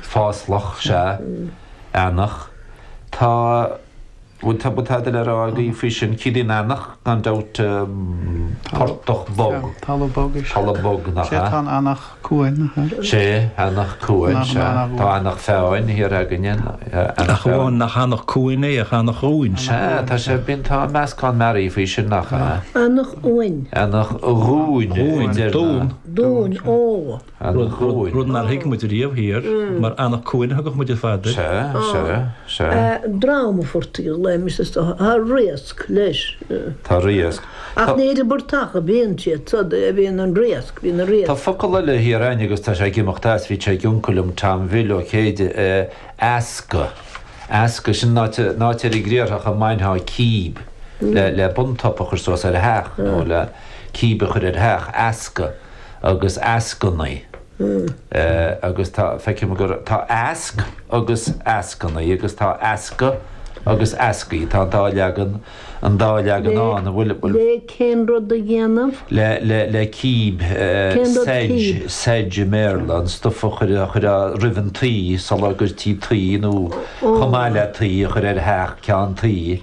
fáslach, sea, eanach, tá, bhuel, tá, bhuel, tada le rá againn faoi sin, ciallaíonn eanach, gan dabht, portach bog, talamh bog, talamh bog, nach ea? Sea, tá an eanach cuain, nach ea? Sea, eanach cuain, sea, tá Eanach Mheáin thiar againn, Eanach Mheáin. Nach eanach cuain é, ach eanach dhúin. Sea, tá sé, bíonn, tá meascán mearaí faoi sin, nach ea? Eanach uain. Eanach dhúin. Dhúin, dún. Dún, ó. rud nár thuig muid riamh thiar, mar Anach Cuain a thugadh muid ar fad air. Sea, sea, sea. Dráma fortaíola é Missus Dubh. Tá riasc leis. Tá riasc. Ach ní idir Murtach a bhíonn siad, sod, a bhíonn an riasc, bíonn an riasc. Tá focal eile thiar againn agus tá sé ag imeacht as, bhí sé ag uncail liom, Tom Bhill Ó Céide, easca, easca, sin an áit, an áit ar an gcriathrach a mbainteá cíb le, le buntsop a chur suas ar theach nó le cíb a chur ar theach, easca. agus eascainí agus tá, feicim gur, tá easc agus eascainí agus tá easca agus eascaí. Tá an dá leagan, an dá leagan ann a bhfuil, bhfuil. Le cén rud a dhéanamh? Le, le, le cíb, sedge, sedge i mBéarla, an stuif a chuir, a chuir a, roimh an tuí, sula gcuirtí tuí nó chomh maith le tuí a chur ar theach ceann tuí.